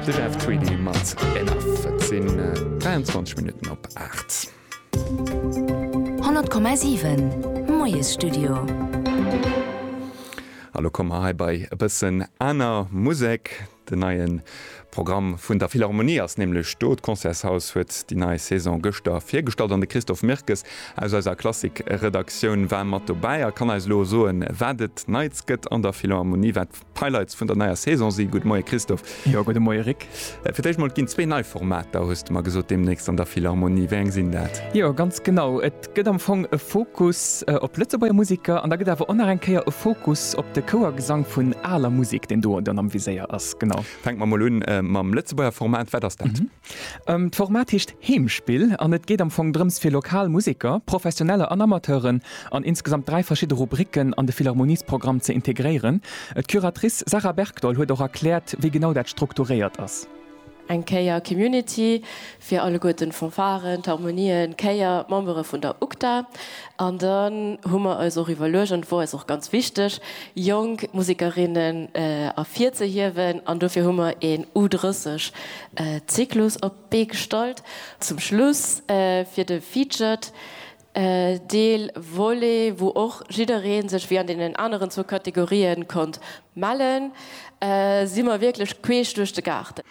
De Jeff Tweedy mat Enough. Et sinn 23 Minutten op 8. 100,7 Moiesstudio. A lo komme mer hei bei e bëssen aner Musek. Den neien Programm vun der Philharmonie ass nämlech do. D'Concertshaus huet déi nei Saison gëschter virgestallt an de Christophe Mirkes aus eiser Klassik-Redaktioun war mat dobäi a kann eis elo soen, wat et Neits gëtt an der Philharmonie, wat D'Highlights vun der neier Saison si, Gudde Moie Christophe. Jo, gudde Moie Rik. Fir d'éischt mol, et ginn zwee nei Formater, hues de mer gesot, deemnächst an der Philharmonie. Wéi eng sinn dat? Jo, ganz genau. Et gëtt am Fong e Fokus op Lëtzebuerger Museker an da gëtt awer och nach eng Kéier e Fokus op de Chouergesang vun aler Musek, deen do dann am Viséier ass. Genau. Fänke mer mol un mam Lëtzebuerger Format. Wat ass dat? D'Format heescht Heemspill an et geet am Fong drëms fir lokal Museker, Professioneller an Amateuren an insgesamt dräi verschidde Rubricken an de Philharmoniesprogramm ze integréieren. D'Curatrice Sarah Bergdoll huet och erkläert, wéi genau dat strukturéiert ass. Eng Kéier Community, fir alleguerten d'Fanfaren, d'Harmonien, d'Chéier, d'Membere vun der UGDA. An dann hu mer eis och iwwerluecht, an et wor eis och ganz wichteg, jonk Musekerinnen ervirzehiewen an dofir hu mer een U30 Zyklus op d'Bee gestallt. Zum Schluss fir de Featured Deel, Volet, wou och jiddereen sech wéi an deenen aneren zwou Kategorien konnt mellen, si mer wierklech queesch duerch de Gaarten.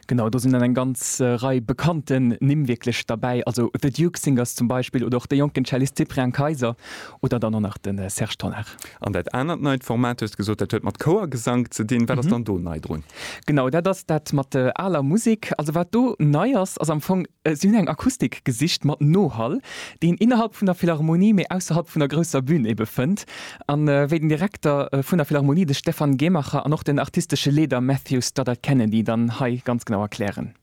Genau, do sinn dann eng ganz Rei bekannten Nimm wierklech derbäi, also The Duke Singers zum Beispill oder och de jonken Cellist Cyprien Keiser Oder dann och nach de Serge Tonnar. An dat anert neit Format, du hues gesot, dat huet mat Chouergesank ze dinn. Wat ass dann do nei drun? Genau, dat ass dat mat aler Musek. Also wat do nei ass, ass am Fong, si hunn eng Akustik gesicht mat Nohall, déi een innerhalb vun der Philharmonie, mee ausserhalb vun der grousser Bün ebe fënnt. A wéi den Direkter vun der Philharmonie, de Stefan Gehmacher, an och den artistesche Leeder Matthew Stoddart-Kennedy dann hei ganz genau erklären.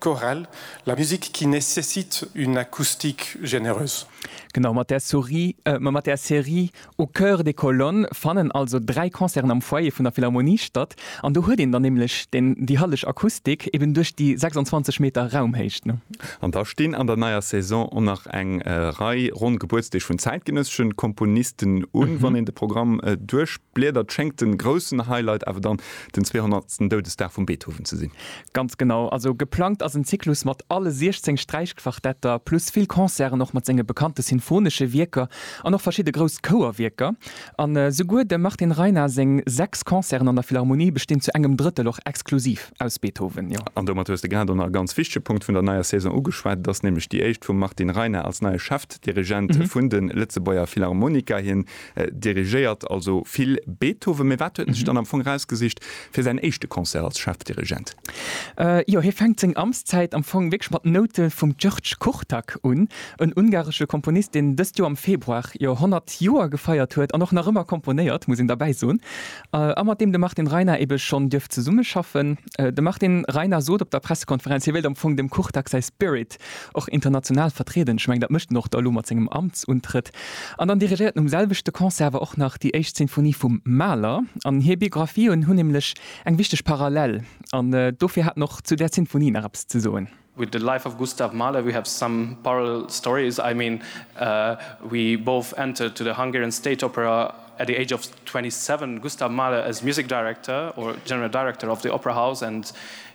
Chorale, La musique qui nécessite une acoustique généreuse. Genau, mat där Sorie, euh, mat där Serie Au cœur des colonnes fannen also dräi Concerten am Foyer vun der Philharmonie statt. An do huet een dann nämlech den, déi hallech Akustik, eben duerch déi 26 Meter Raumhéicht, ne? An da stinn an der neier Saison och nach eng Rei ronn Gebuertsdeeg vun zäitgenëssesche Komponisten un. Wann een de Programm duerchbliedert, schéngt de groussen Highlight awer dann den 200. Doudesdag vum Beethoven ze sinn. Ganz genau, also geplangt ass en Zyklus mat alle 16 Sträichquartetter, plus vill Concerten och mat senge bekannte sinfonesche Wierker an och verschidde grouss Chouerwierker. An esouguer dem Martin Reina seng 6 Concerten an der Philharmonie bestinn zu engem Drëttel och exklusiv aus Beethoven, jo. An domat hues de grad och nach e ganz wichtege Punkt vun der neier Saison ugeschwat, et ass nämlech déi éischt vum Martin Reina als neie Chefdirigent vun de Lëtzebuerger Philharmoniker. Hien Dirigéiert also vill Beethoven. Mee wat huet en sech dann am Fong erausgesicht fir säin éischte Concert als Chefdirigent? Jo, hie fänkt seng Amtszäit am Fong wierklech mat Noute vum György Kurtak un, en ungaresche Komponist, deen dëst Joer am Februar jo 100 Joer gefeiert huet an och nach ëmmer komponéiert, muss een derbäi soen, a mat deem de Martin Reiner ebe schonn duerft zesummeschaffen. De Martin Reiner sot op der Pressekonferenz, hie wéilt am Fong dem Kurtak säi Spirit och international vertrieden, ech mengen dat mécht en och da elo mat sengem Amtsuntrëtt, an dann dirigéiert en um selwechte Concert awer och nach déi éischt Sinfonie vum Mahler. An hir Biographien hunn nämlech eng wichteg Parallel, an dofir hat en och zu där Sinfonie nach eppes ze soen. With the life of Gustav Mahler we have some parallel stories, I mean we both entered to the Hungarian State Opera at the age of 27, Gustav Mahler as music director or general director of the opera house and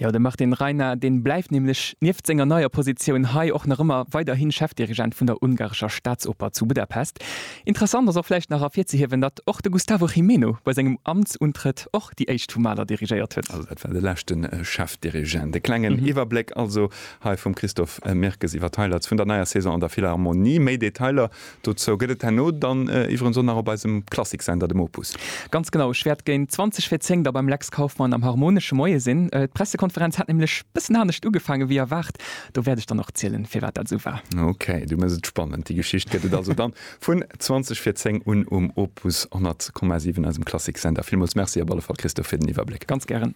Jo, de Martin Rynar, dee bleift nämlech nieft senger neier Positioun hei och nach ëmmer weiderhi Chefdirigent vun der ungarescher Staatsoper zu Budapest. Interessant ass och vläicht nach ervirzehiewen, datt och de Gustavo Gimeno bei sengem Amtsuntrëtt och déi éischt vu Mahler dirigéiert huet. Also dat war de leschte Chefdirigent. E klengen Iwwerbléck also hei vum Christophe Mirkes iwwer d'Highlights vun der neier Saison an der Philharmonie. Méi Detailer Dozou gëtt et herno dann iwwerens och nach op eisem Klassiksender, dem Opus. Ganz genau, ech wäert géint 20 vir 10 da beim Lex Kauffmann am Harmonesche Moie sinn. D'Pressekonferenz hat nämlech bëssen anescht ugefaange wéi erwaart. Do wäert ech dann och zielen, firwat dat esou war. Ok, du méchs et spannend. Déi Geschicht gëtt et also dann vun 20 vir 10 un um Opus 100,7, eisem Klassiksender. Villmools Merci op alle Fall, Christophe, fir den Iwwerbléck. Ganz gären.